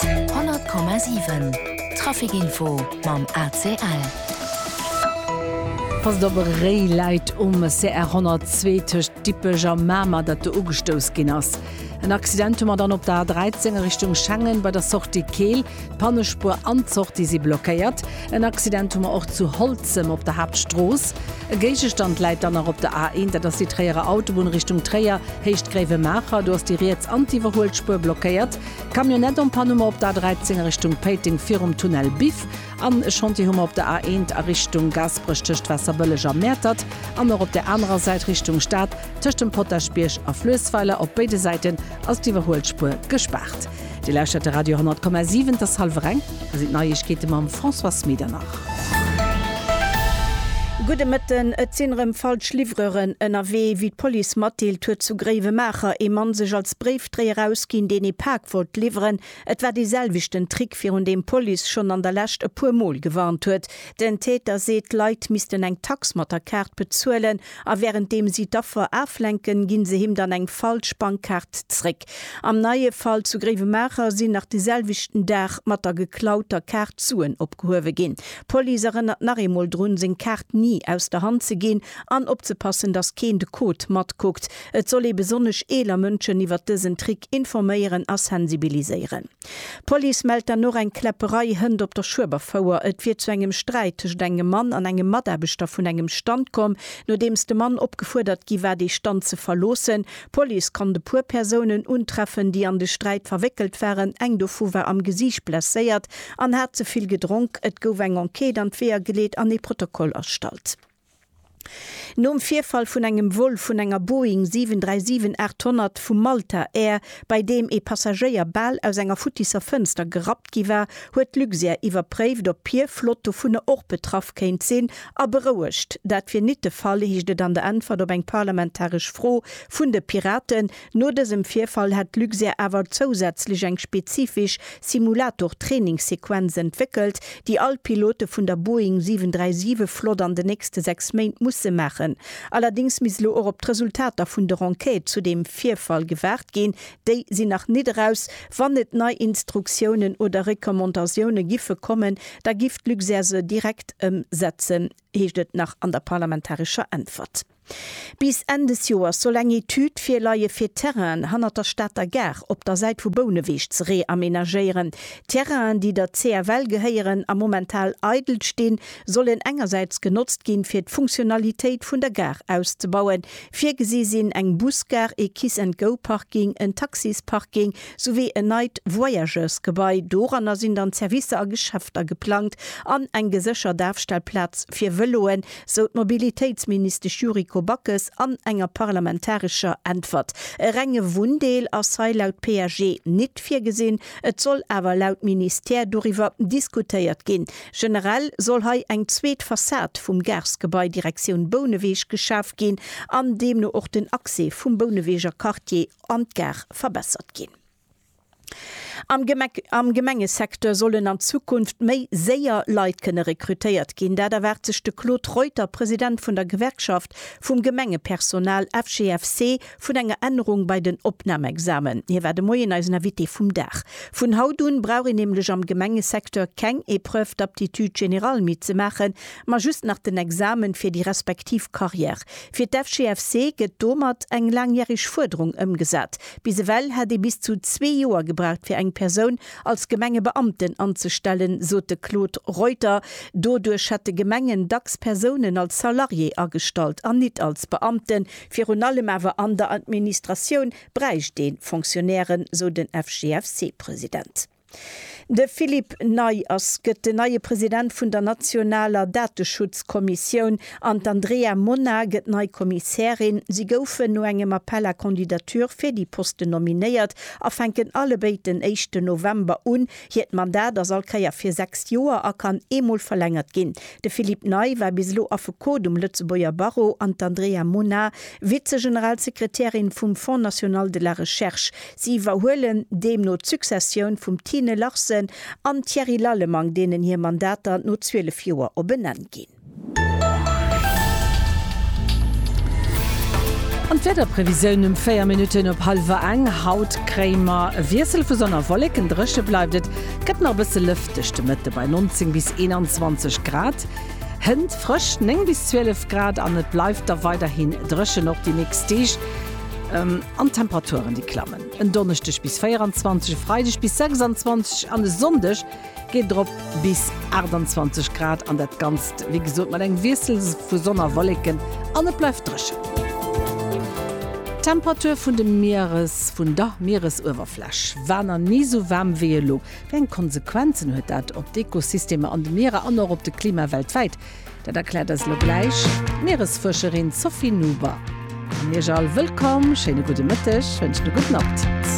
100,7 Trafic info mam ACL. Passt op, e Réi läit um CR 102 tëscht Dippech a Mamer, dat do ugestouss ginn ass. En Accident hu mer dann op der A13 a Richtung Schengen bei der Sortie Keel. D'Pannespuer an d'Sortie si blockéiert. En Accident hu mer och zu Holzem op der Haaptstrooss. E Géigestand läit dann nach op der A1, dat ass déi Tréierer Autobunn Richtung Tréier, Héicht Gréiwemaacher. Do ass déi riets an d'Iwwerhuelspuer blockéiert. Camionnette en panne hu mer op der A13 a Richtung Péiteng virum Tunnel Biff. An e Chantier hu mer op der A1 a Richtung Gaasperech tëscht Waasserbëlleg a Mäertert. An och op där anerer Säit Richtung Stad tëscht dem Potaschbierg a Fluessweiler op béide Säiten ass d'Iwwerhuelspuer gespaart. Dir lauschtert de Radio 10,7, et ass hallwer eng, da sinn d'Neiegkeete mam Françoise Medernach. Gudde Mëtten. Et sinn erëm falsch Livreuren ënnerwee. Wéi d'Police matdeelt, huet zu Gréiwemaacher ee Mann sech als Bréifdréier ausginn, deen ee Pak wollt liwweren. Et war dee selwechten Trick, virun deem d'Police schonn an der Lescht e puer Mol gewarnt huet. Den Täter seet, d'Leit missten eng Tax mat der Kaart bezuelen. A während deem si d'Affer aflenken, ginn se him dann eng falsch Bankkaart zréck. Am neie Fall zu Gréiwemaacher sinn nach de selwechten Dag mat der geklauter Kaart d'Suen opgehuewe ginn. D'Police erënnert nach eemol drun, seng Kaart ni aus der Hand ze ginn an opzepassen, dass keen de Code matkuckt. Et soll ee besonnesch eeler Mënschen iwwert dësen Trick informéieren a sensibiliséieren. D'Police mellt dann och eng Kläpperei Hënt op der Schueberfouer. Et wier zu engem Sträit tëschent engem Mann an engem Mataarbechter vun engem Stand komm, nodeems de Mann opgefuerdert gi war, dee Stand ze verloossen. D'Police konnt e puer Persounen untreffen, déi an de Sträit verwéckelt waren. Eng dovu war am Gesiicht blesséiert an hat ze vill gedronk. Et gouf eng Enquête an d'Weeër geleet an ee Protokoll erstallt. Nom Virfall vun engem Vol vun enger Boeing 737-800 vu Malta Air, bei deem ee Passagéier bal aus enger futtisser Fënster gerappt gi war, huet Luxair iwwerpréift, ob hir Flott dovunner och betraff kéint sinn, a berouegt. Dat wier nit de Fall, heescht et an der Äntwert op eng parlamentaresch Fro vun de Piraten. No dësem Virfall hätt d'Luxair awer zousätzlech eng spezifisch Simulator-Trainingssequenz entwéckelt, déi all Pilote vun der Boeing 737 Flott an de nächste 6 Méint musse maachen. Allerdéngs misst elo och op d'Resultater vun der Enquête zu deem Virfall gewaart ginn. Déi sinn nach nit eraus. Wann et nei Instruktiounen oder Recommandatioune giffe kommen, da giff d'Luxair se direkt ëmsetzen, heescht et nach an der parlamentarescher Äntwert. Bis Enn des Joers soll eng Etüd virleie fir d'Terrainen hannert der Stater Gare op der Säit vu Bouneweg ze reamenagéieren. D'Terrainen, déi der CFL gehéieren a momental eidel stinn, sollen engersäits genotzt ginn, fir d'Funktionalitéit vun der Gare auszebauen. Virgesi sinn eng Busgare, ee Kiss-and-Go-Parking, en Taxisparking souwéi en neit Voyageursgebai. Doranner sinn dann Servicer a Geschäfter geplangt an eng geséchert Afstellplaz fir Vëloen, sou d'Mobilitéitsministesch Yuriko Backes an enger parlamentarescher Äntwert. E renge Wunndeel ass hei laut PAG nit virgesinn, et soll awer laut Ministère doriwwer diskutéiert ginn. Generell soll hei eng zweet Fassad vum Garsgebai Direktioun Bouneweg geschaf ginn an deemno och den Accès vum Bouneweger Quartier an d'Gare verbessert ginn. Am Gemengesecteur sollen an Zukunft méi séier Leit kënne rekrutéiert ginn. Dat erwaart sech de Claude Reuter, President vun der Gewerkschaft vum Gemengepersonal, FGFC, vun enger Ännerung bei den Opnamexamen. Hie war de Moien eisen Invité vum Dag. Vun haut un brauch een nämlech am Gemengesecteur keng Épreuve d'aptitude générale méi ze maachen, ma just nach den Examen fir déi respektiv Carrière. Fir d'FGFC gëtt domat eng laangjäreg Fuerderung ëmgesat, Bis ewell hätt ee bis zu zwee Joer gebraucht fir eng Persoun als Gemengebeamten anzestellen, sot de Claude Reuter. Doduerch hätte Gemengen dacks Persounen als Salarié agestallt an nit als Beamten. Virun allem awer an der Administratioun bräicht ee Fonctionnairen, sou den FGFC-President. De Philippe Neyes gëtt den neie President vun der nationaler Dateschutzkommissioun an d'Andrea Mona gëtt nei Kommissärin. Si goufen no engem Appel à candidatures fir déi Posten nominéiert a fänken allebéid den éischten November un. Hiert Mandat ass all Keier fir sechs Joer a kann eemol verlängert ginn. De Philippe Ney war bis elo Affekot um Lëtzebuerger Barreau an d'Andrea Mona Vize-Generalsekretärin vum Fonds national de la recherche. Si iwwerhuelen deemno d'Successioun vum Tine Larsen an dem Thierry Lallemand, deenen hir Mandater no 12 Joer op en Enn ginn. An d'Wiederprevisioun um 4 Minutten op hallwer eng, Haut kréie mer e Wiessel vu Sonn a Wolleken, dréche bleift et, gëtt nach e bësse lëfteg de Mëtte bei 19 bis 21 Grad, hënt frësch 9 bis 12 Grad an et bleift da weiderhi dréchen och déi nächst Deeg. An d'Temperaturen, déi klammen en Donneschdeg bis 24, e Freideg bis 26 an e Sonndeg geet et erop bis 28 Grad an dat Ganzt, wéi gesot, mat engem Wiessel vu Sonn a Wolleken an et bleift dréchen. D'Temperature vun de Mieres, vun der Mieresuewerfläch war nach ni esou waarm wéi elo. Wéi eng Konsequenzen huet dat op d'Ekosystemer an de Mierer an och op de Klima weltwäit? Dat erkläert eis elo gläich d'Mieresfuerscherin Sophie Nuber. An Iech all wëllkomm, schéine gudde Mëtteg, wënschen e gudden Appetit.